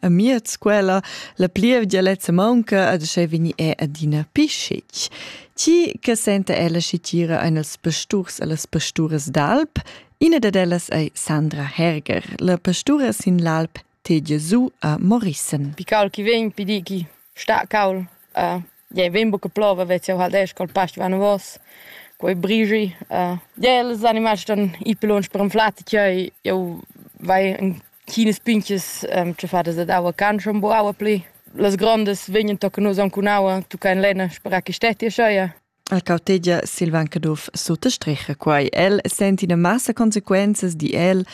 amiez quella la plievgia lezza maunca ad sche vegni è adina pischic. Ti che senta ella scitira ein els pasturs e las pasturas d'alp, ina dad ellas ei Sandra Herger, la pastura sin l'alp Te Gesù a Morissen. Pical chi vegn, pi di chi sta caul a Jei vegn buca plova vez jeu halt esch col past vanavos, quei brigi. Jei els animals ston ir pli lunsch per anflar tgei jeu vai en chinas pintgas tschaffadas dad aua can schon bu aua pli. Las grondas vegnan tochen nus aunc cun aua, tucca en lenna spera che stetti ascheia. La cautegia Silvan Caduff suttostricha quai. El senti ina massa consequenzas di el,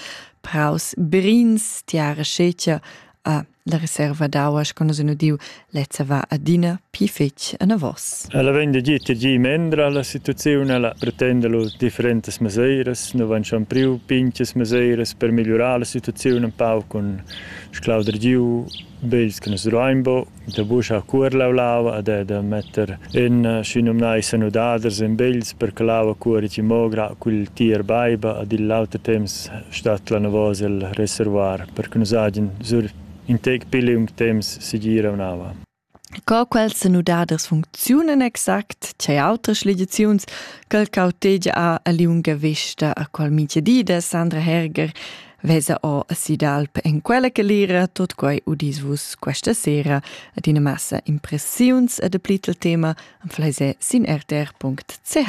praus brins, tiara scetgia, a La reserva d'aua sco nus en udiu lezza va adina pli fetg anavos. Ella vegn da gir tgi mendra la situaziun, ella pretenda lu differentas meseiras, nu van schon priu pinches meseiras per migliurar la situaziun un pau cun sclauder giu bels che nus ruain bo, da buca cuorlau l'aua e da metter en schinumnai sanudaders en bels per che l'aua cuori mogra cul tier baiba ad il l'auter temps stat la navos el reservoir. per che nus hagen sur in tec pli lung temps segir aunava. Co quels senudaders funcziunen exact, c'è altres ligiziuns che cautegia a liunga vista a qual migia dida Sandra Herger vesa o si d'alp en quella che lira tot quei udis vus questa sera ad ina massa impressiuns e de plitel tema am fleise sin rtr.ch.